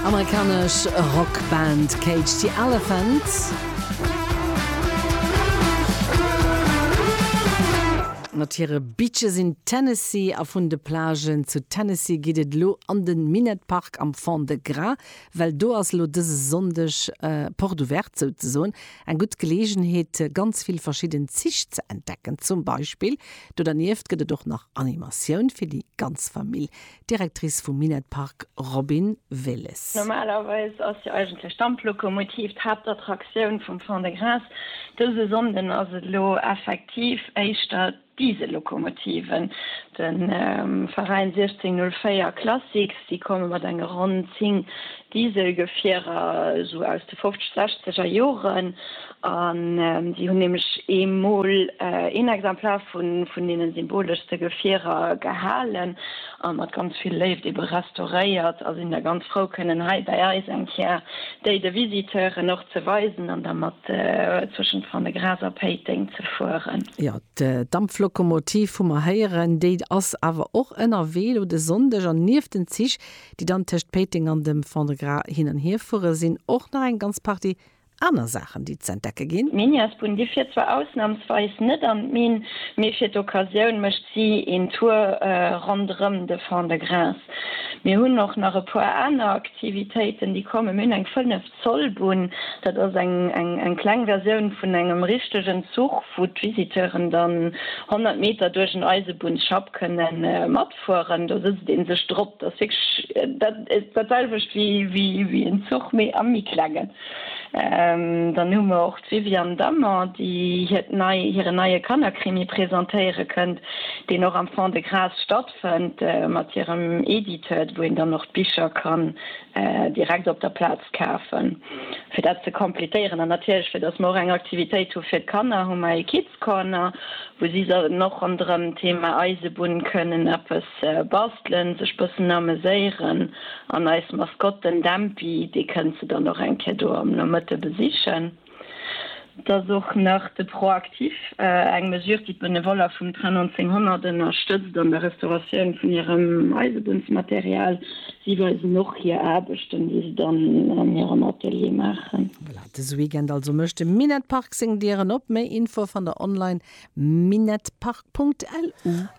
Amerikanesch Rockband Cage the Elephant. Mat hire Beaches in Tennessee a vun de Plagen zu Tennessee geet et elo an de Minett Park am Fond-de-Gras, well do ass elo dëse Sonndeg Porte ouverte, souzesoen eng gutt Geleegenheet ganz vill verschidden Zich ze entdecken. Zum Beispill do dernieft gëtt et och nach Animatioun fir déi ganz Famill. D'Directrice vum Minett Park Robin Willes. Normalerweis ass jo eigentlech d'Damplokomotiv d'Haaptattraktioun vum Fond-de-Gras. Dëse Sonnden ass et elo effektiv éischter d'Diesel-Lokomotiven. De Veräin 1604 Classics, déi komme mat enge ronn 10 Dieselgefierer esou aus de fofzeg, sechzeger Joren, an si hunn nämlech ee Mol een Exemplar vun deene symboleschste Gefierer gehalen a mat ganz vill Léift ebe restauréiert a sinn da ganz frou kënnen hei bäi eis eng Kéier déi de Visiteuren och ze weisen an da mat zwëschent Fannegras a Péiteng ze fueren. Jo, d'Dampflokomotiv hu mer héieren, déi ass awer och ënnerwee elo de Sonndeg an nieft den Zich déi dann tëscht Péiteng an dem Fond-de-Gras hin an hier fueren, sinn och nach eng ganz Partie aner Saachen, déi z'entdecke ginn. D'Minièresbunn, déi fiert zwar ausnamsweis net an d'Minn, mee fir d'Occasioun mécht si een Tour ronderëm de Fond-de-Gras. Mir hunn och nach e puer aner Aktivitéiten, déi kommen. Mir hunn eng 5. D'Zollbunn, dat ass eng kleng Versioun vun engem richtegen Zuch, wou d'Visiteuren dann 100 Meter duerch en Eisebunnsschapp kënne matfueren. Do sëtzt ee sech drop. Dat ass wierklech dat selwecht wéi en Zuch, mee a méi klenge. Dann hu mer och d'Viviane Dammer, déi hiert nei hiren neie Kannerkrimi presentéiere kënnt, deen och am Fond-de-Gras stattfënnt. Fënnt mat hirem Edited, wou een dann och d'Bicher kann direkt op der Plaz kafen. Fir dat ze completéieren an natierlech fir dass mer och eng Aktivitéit hu fir d'Kanner, hu mer ee Kids Corner, wou si dann och ronderëm d'Thema Eisebunn kënnen eppes bastelen, sech bëssen ameséieren an eis Maskott, den Dämpi, dee kënnt se dann och eng Kéier do am Nomëtte besichen. Et ass och nach de Proactif, eng Mesure, déi d'Benevoller vum Train 1900 ënnerstëtzt an der Restauratioun vun hirem Eisebunnsmaterial. Si weisen och hir Aarbechten, déi se dann an hirem Atelier maachen. Voilà, dëse Weekend also mécht de Minett Park seng Dieren op. Méi Infoe fannt der online, minettpark.lu.